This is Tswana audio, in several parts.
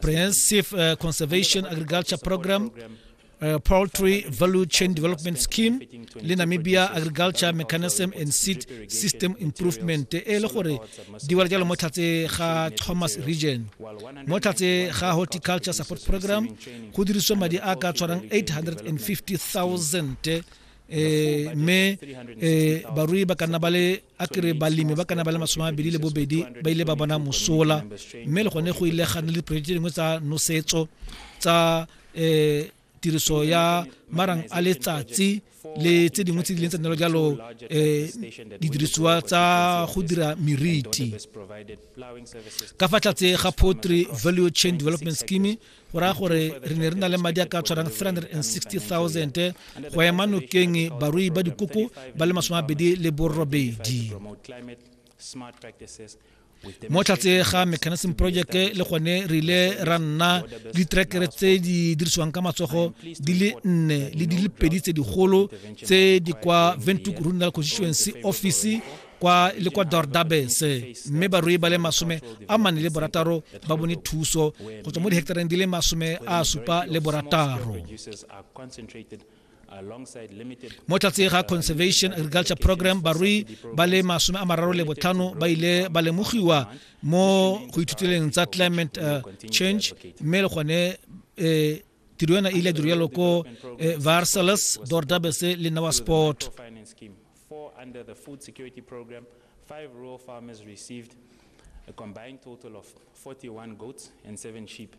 Comprehensive uh, Conservation Agriculture Program, uh, Poultry Value Chain Development Scheme le Namibia Agriculture Mechanism and Seed System Improvement e le gore di wala jalo mo tlhatse ga Thomas Region mo tlhatse ga Horticulture Support Program go dirisiwa madi a ka tshwarang 850,000 eh me eh barui ba kana ba le a kere balemi ba kana ba le masome a mabedi le bobedi ba ile ba bona mosola mme le gone go ile ga nna le diporojeke tse dingwe tsa nosetso tsa um tiriso ya marang a letsatsi le tse dingwe tse di leng tsa nelo jalo um didirisiwa tsa go dira meriti ka fa tlatse ga potry value chain development scheme go raya gore re ne re na le madi a ka tshwarang 360000 go ema nokeng barui ba dikoko ba le masome abedi le borobedi mo tlhatse ga mechanism project le gone re ile ra nna ditrekere tse di dirisiwang ka matsogo di le nne le di le pedi tse digolo tse di kwa ventuk rural constituency office kwa le kwa dordabes mme barui ba le masome a mane le borataro ba bone thuso go tswa mo diheketareng di le masome a supa le borataro mo tlatseng ga conservation agriculture program barui ba le masome a mararo le botlhano ba ile ba lemogiwa mo go ithuteleng tsa climate uh, change mme le gone um tiro ena e ile ya diro yalo ko eh, varsalas dordabese le nawa sport four under the Food Security Programme, five rural farmers received a combined total of 41 goats and seven sheep.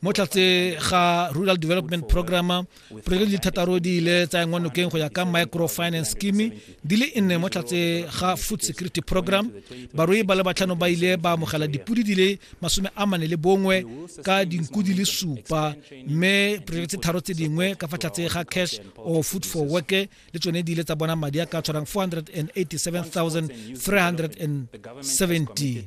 mo tlatse ga rural development programme project di thataro di ile tsa engwa nokeng go ya ka microfinance scheme di le nne mo tlatse ga food security program barui ba le batlhano ba ile ba amogela dipodi di le masome a mane le bongwe ka dinku di le supa mme project tharo tse dingwe ka fa tlatse ga cash or food for work le tsone di ile tsa bona madi a ka tshwarang 487370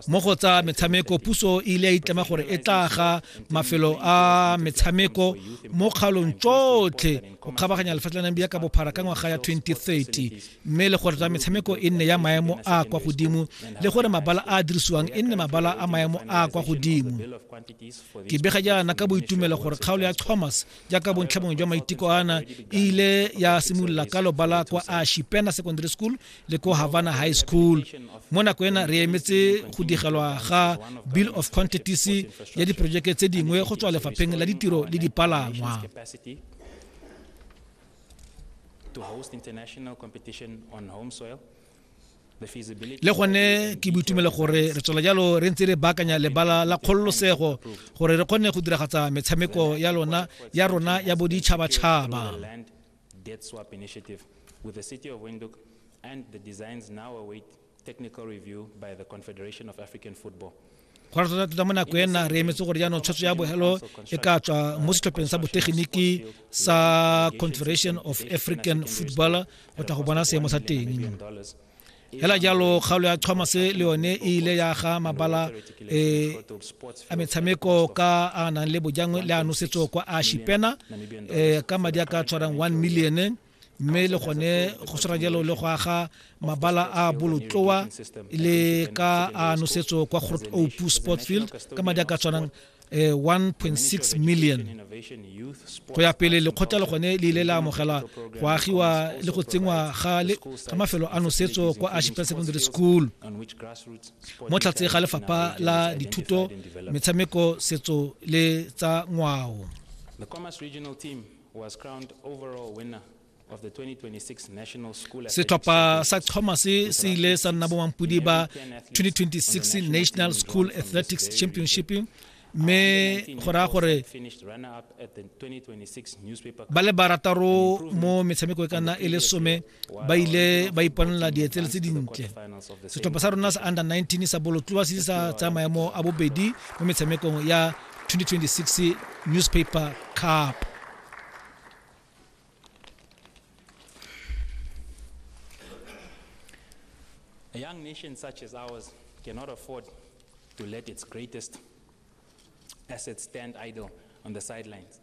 mo go tsa metshameko puso e ile ya itlama gore e tla ga mafelo a metshameko mo kgalong tsotlhe go kgabaganya lefatshe la namibia ka bophara ka ngwaga ya 2030 mme le gore tsa metshameko e nne ya maemo a kwa godimo le gore mabala a a dirisiwang e nne mabala a maemo a kwa godimo ke bega jaana ka boitumelo gore kgaolo ya thomas jaaka bontlha bongwe jwa maiteko ana e ile ya simolola ka lobala kwa ashipena secondary school le ko havana high school mo nako ena re emetse go digelwa ga bill of quantities ya diporojeke tse dingwe go tswa lefapheng la ditiro le dipalangwa to host international competition on home soil le gone ke boitumelo gore re tswela jalo re ntse re baakanya lebala la kgololosego gore re kgone go diragatsa metshameko ya lona ya rona ya boditšhabatšhaba and the designs now await technical review by the Confederation of African Football. go rata tota mo nako ena re emetse gore jaanong tshwetso ya bogelo e ka tswa mo setlhopheng sa botegeniki sa confederation of african football go tla go bona seemo sa teng hela jalo kgaolo ya thomas le yone e ile ya ga mabala e a metshameko ka a nang le bojangwe le a nosetso kwa a shipena e, ka madi a ka tshwarang 1 million mme le gone go tshwara jalo le go aga mabala a bolotloa le ka a nosetso kwa grot opu sport field ka madi a ka tshwanang 1.6 eh, million go ya pele lekgotla le gone le ile la amogela go agiwa le go tsenngwa ga mafelo a nosetso kwa ashipel secondary school mo tlhatse ga lefapha la dithuto metshameko setso le tsa ngwao setlhopha sa thomas se ile sa nna bomampodi ba 2026 national school athletics championship mme go raya gore ba le barataro mo metshameko e ka nna e le some ba ile ba iponela dietsele tse dintle setlhopha sa rona sa under 19 sa bolotloa se sa tsaya maemo a bobedi mo metshamekong ya 2026 newspaper cup A young nation such as ours cannot afford to let its greatest assets stand idle on the sidelines.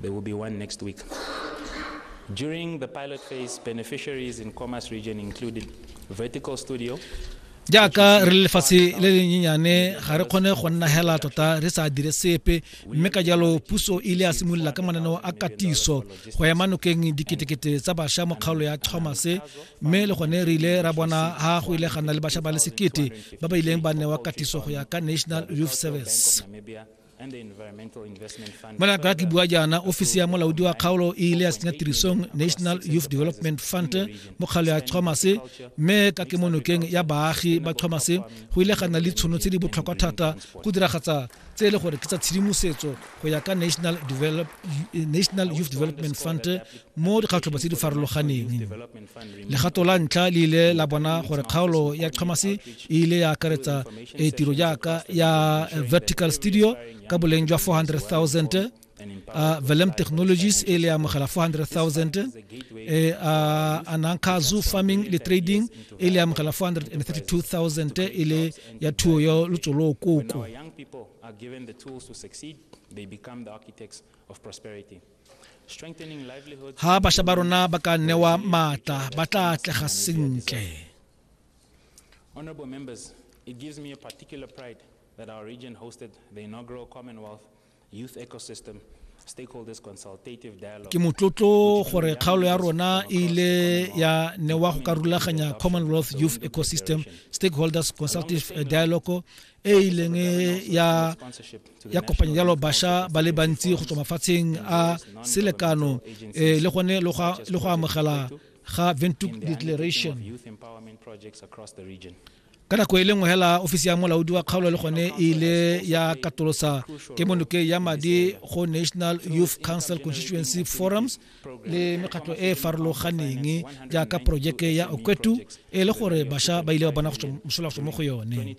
There will be one next week. During the pilot phase, beneficiaries in Khomas region included Vertical Studio, jaaka re le lefatshe le le nyenyane ga re kgone go nna hela tota re sa dire sepe mme ka jalo puso e ile ya simolola ka mananeo a katiso go ema nokeng diketekete tsa bašwa mo kgaolo ya thomase mme le gone re ile ra bona ga go ile ga nna le bašwa ba le sekete ba ba ileng ba newa katiso go ya ka national youth service Mala ka ke bua jaana ofisi ya molaodi wa kgaolo e ile ya tsenya tirisong national youth development fund mo kgalo ya chomase mme ka kemonokeng ya baagi ba chomase go ile ga nna le tshono tse di botlhokwa thata go diragatsa tse e le gore ke tsa tshedimosetso go ya ka national, develop, national youth development fund mo dikgatlhobo tse di farologaneng legato la ntlha le ile la bona gore kgaolo ya kghamase e ile ya akaretsa e tiro jaaka ya vertical studio ka boleng jwa 400000 uh, Velem Technologies e le amogela 400,000 e uh, Ananka Zoo Farming le Trading e le amogela 432,000 e le ya thuo ya lotsolo koko ga bašwa ba rona ba ka newa maatla ba tla atlega sentle Honorable members, it gives me a particular pride that our region hosted the inaugural Commonwealth Youth Ecosystem ke motlotlo gore kgaolo ya rona e ile ya newa go ka rulaganya commonwealth youth ecosystem stakeholders consultative dialogue e e ileng ya ya kopanya jalo basha ba le bantsi go tswa mafatsheng a selekano um le gone le go amogela ga ventuk declaration ka nako e le nngwe hela ofisi ya molaodi wa kgaolo le gone e ile ya katolosa kemonoke ya madi go national youth council constituency forums le mekgatlo e e farologaneng jaaka porojeke ya okwetu e le gore bašwa ba ile ba bona mosola go tswa mo go yone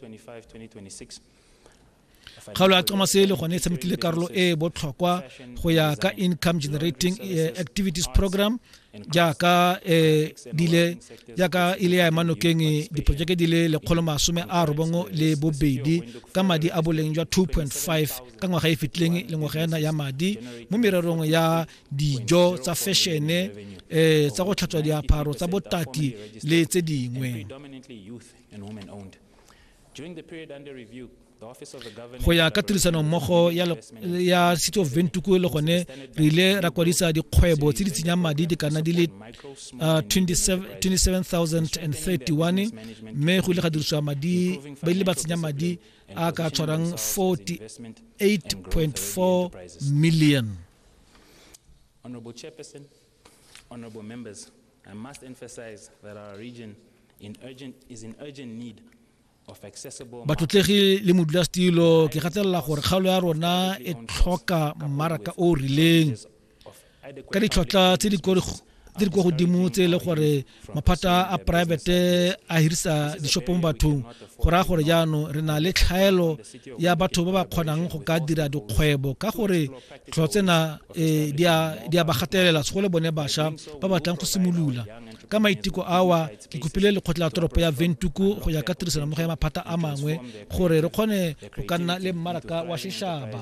kgaolo ya comase le gone e tshamekile karolo e e botlhokwa go ya ka income generating eh, activities program jaaka eh, dile jaaka e le ya emanokeng eh, diporojeke di le lekgolo masome a robongo le bobedi ka madi a boleng jwa 2.5 ka ngwaga e fetileng le ngwaga ena ya madi mo mererong ya dijo tsa fešene um eh, tsa go tlhatswa diaparo tsa botaki le tse dingwe go ya ka tirisanommogo ya city of ventuku le gone re ile ra kwadisa dikgwebo tse di tsenyang madi di kana di le 27031 uh, mme go ile ga dirisiwa madi ba ile ba tsenya madi a ka tshwarang 48.4 million Honorable Chairperson, honorable members, I must emphasize that our region in urgent, is in urgent need batlotlegi le modulasetilo ke gatelela gore kgaolo ya rona e tlhoka mmaraka o o rileng ka ditlhotlha tse di di kwa godimo tse e le gore maphata a poraebete a hirisa dishopo mo bathong go raya gore jaanong re na le tlhaelo ya batho ba ba kgonang go ka dira dikgwebo ka gore tlho tsena eh, di a ba gatelela tsego le bone bašwa ba batlang go simolola ka maiteko awa ke kopile lekgotla la toropo ya ventuku go ya ka tirisanommogo ya maphata a mangwe gore re kgone go ka nna le mmaraka wa sheshaba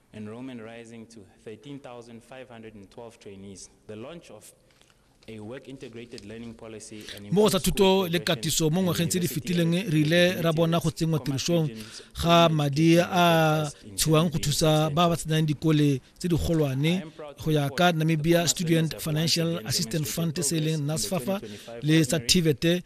enrollment rising to 13,512 trainees, the launch of a work integrated learning policy and mo go tsa thuto le katiso mo ngwageng tse di fetileng re ile ra bona go tsenngwa tirisong ga madi a tshiwang go thusa ba ba tsenang dikole tse di golwane go ya ka namibia student financial assistance fund se e leng nasfafa le tsa tivete